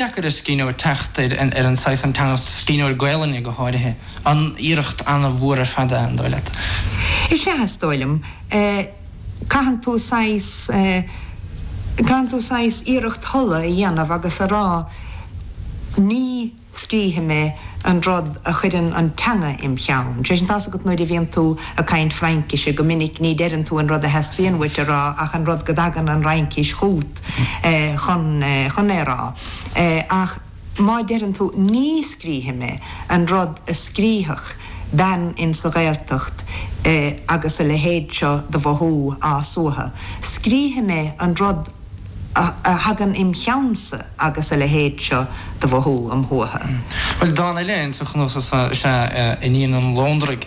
deacair ar scríbhneoir teacht ar an saghas, an teanga, scríbhneoir Gaelainne go háirithe. An iarracht an-mhór ar fad é, an dóigh leat? Is ea, is dóigh liom. Caitheann tú saghas, caitheann tú saghas iarracht thola a dhéanamh agus a rá ní scríobfaidh mé an rud a chuireann an teanga im' cheann. Sé sin, tá's agat nuair a bhíonn tú ag caint Fraincise, go minic ní deireann tú an rud a theastaíonn uait a rá ach an rud go dtagann an Fhraincis chugat. chun é a rá ach má deireann tú ní scríobfaidh mé an rud a scríobhfadh bean in sa Ghaeltacht agus a leithéid seo de mhothú á suathadh, scríobfaidh mé an rud a thagann im cheannsa agus a leithéid seo de mhothú am shuathadh. Bhuel, dán eile in sa chnuasach seo is ea 'Iníon an Lóndraigh'.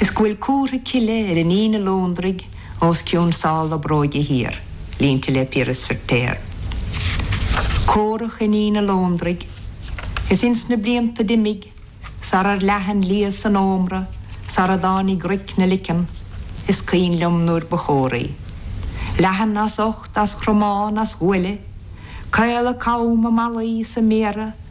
is go bhfuil comhartha cille ar Iníon an Lóndraigh os cionn sála bróige thiar, línte le Piaras Feirtéar. Córach Iníon an Lóndraigh, is ins na blianta d'imigh, sarar leath an liath san ómra, sara dtáinig roic na leiceann, is cuimhin liom nuair ba chóraí. Leathan as ucht, as chromán, as ghuaille, caol a com, a malaí, is a méara,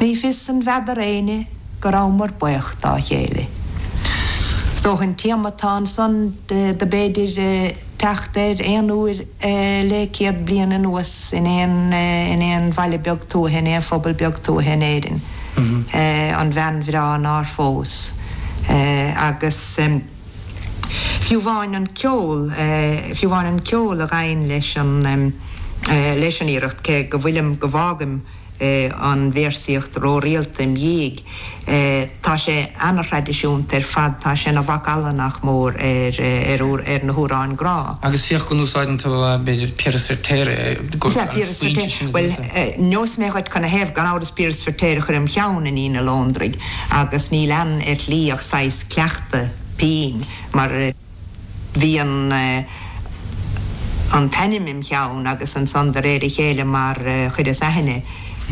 Ní fios an bhfeadar éinne go rabhamar baoch dá chéile. Is dócha an téama atá ansan do b'fhéidir teacht air aon uair le céad bliain anuas in aon in aon bhaile beag tuaithe, in aon phobal beag tuaithe in Éirinn, an bhean bhreá nár phós. Agus fiú amháin an ceol, fiú amháin an ceol a ghabhann leis an leis an iarracht, cé go bhfuilim, go bhfágaim, an véarsaíocht rórialta im' dhiaidh. Tá sé ana-thraidisiúnta ar fad, tá sé ina mhac alla, nach mór, ar na hamhráin grá. Agus féach go n-úsáideann tú, b'fhéidir, Piaras Feirtéar, go bhfuil an foinse sin agat. Sea, Piaras Feirtéar. Bhuel, neosfaidh mé dhuit cad 'na thaobh. Gan amhras, Piaras Feirtéar a chuir im' cheann Iníon an Lóndraigh agus níl ann ar shlí ach saghas cleachtadh pinn mar, bhí an an t-ainm im cheann agus ansan de réir a chéile mar chuireas aithne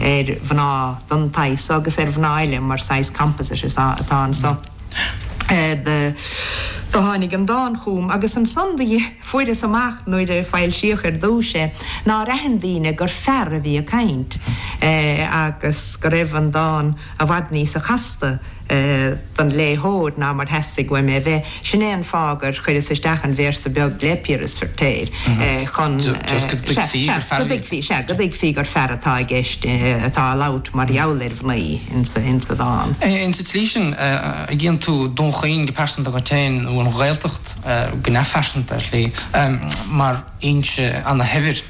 ar mhná den tsaghas so agus ar mhná eile mar saghas composite is ea atá anso do do tháinig an dán chugam agus ansan do fuaireas amach nuair a foilsíodh ar dtúis é nár aithin daoine gur fear a bhí ag caint agus go raibh an dán. I bhfad níosa chasta don léitheoir ná mar theastaigh uaim é a bheith, sin é an fáth gur chuireas isteach an véarsa beag le Piaras Feirtéar chun, sea, go dtuigfí, sea, go dtuigfí gur fear atá i gceist, atá ag labhairt mar gheall ar mhnaoi insa dán. Insa tslí sin, an gcíonn tú Dún Chaoin go pearsanta dhuit féin, nó an Ghaeltacht go neamhphearsanta ar shlí, mar fhoinse ana-shaibhir.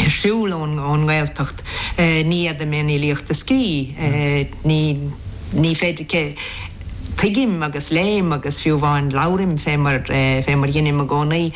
ar siúl ón nGaeltacht, ní fhéadfainn filíocht a scríobh, ní, ní féidir, cé tuigim agus léim agus fiú amháin labhraim fé mar, fé mar dheinim i gcónaí.